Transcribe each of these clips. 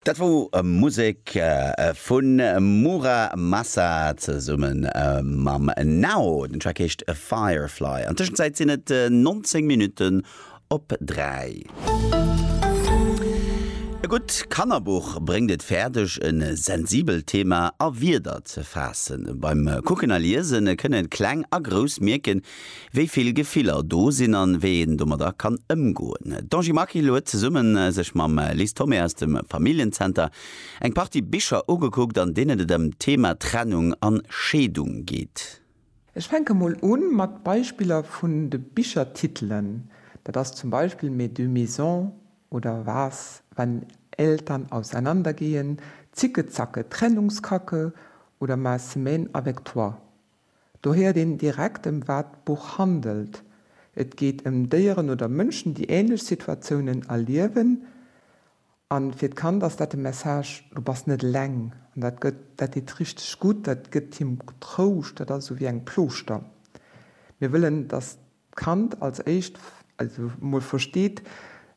Dat wor Musek vun Mura Masa zesumme mam Nao. Den Track heescht Firefly. An Tëschenzäit sinn et 19 Minutten op 3. E gutt Kannerbuch bréngt et fäerdeg, e sensibelt Thema a Wierder ze faassen. Beim Kucken a Liesen kënnen Kleng a Grouss mierken, Wéi vill Gefiller do sinn an wéi een domadder kann ëmgoen. D'Angie Maquil huet zesumme sech mam Lis Thomé aus dem Familljen-Zenter eng Partie Bicher ugekuckt, an deenen et ëm d'Thema Trennung an Scheedung geet. Ech fänke mol u mat Beispiller vun de Bichertitelen, dat ass zum Beispill Mes deux maisons oder Was, wenn Eltern auseinandergehen, Zicke Zacke, Trennungskacke oder Ma semaine avec toi. Do héiert een direkt ëm wat d'Buch handelt, et geet ëm Déieren oder Mënschen, déi änlech Situatiounen erliewen. A fir d'Kand ass dat de Message, du bass net eleng. An dat gëtt, dat deet richteg gutt, dat gëtt him Trouscht, dat ass esou wéi eng Plooschter. Mir wëllen, dass Kand als éischt mol versteet,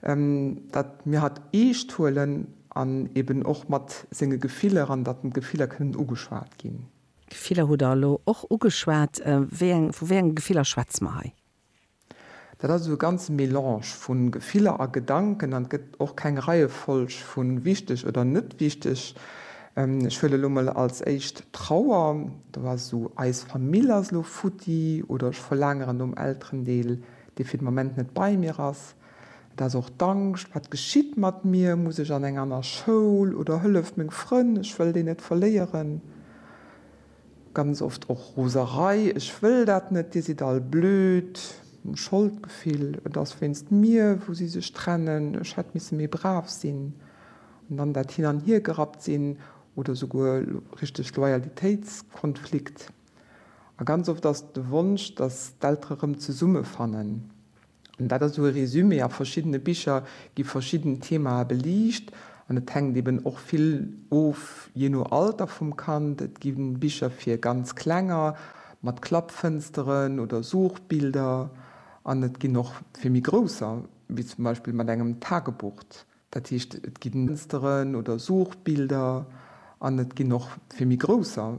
datt mir hatt eescht huelen an eben och mat senge Gefiller an datt d'Gefiller kënnen ugeschwat ginn. Gefiller hutt Der elo och ugeschwat. Vu wéi enge Gefiller schwätze mer hei? Dat ass esou e ganze Melange vu Gefiller a Gedanken an et gëtt och keng Reiefolg vu wichteg oder net wichteg. Ech huelen elo mol als éischt Trauer, do ass esou, eis Famill ass elo futti, oder ech verlaangeren nom Elterendeel, dee fir de Moment net bei mir ass. Et ass och d'Angscht, wat geschitt mat mir, muss ech an eng aner Schoul oder hëlleft meng Frënn, ech wëll déi net verléieren. Ganz oft och Roserei, ech wëll dat net, dir sidd all blöd, Scholdgefill, et ass wéinst mir, wou si sech trennen, ech hätt misse méi brav sinn. An dann dat Hin an Hier gerappt sinn oder souguer richteg Loyalitéitskonflikt. A ganz oft ass et de Wonsch, datt d'Eltere rëm zesumme fannen. An dat ass esou e Resumé. A verschiddene Bicher gi verschidden Themae beliicht an et hänkt eben och vill of jee no Alter vum Kand. Et gi Bicher fir ganz Klenger mat Klappfënsteren oder Suchbilder an et ginn och fir méi Grousser, wéi zum Beispill mat engem Tagebucht. Dat heescht, et gi Fënsteren oder Suchbilder an et ginn och fir méi grousser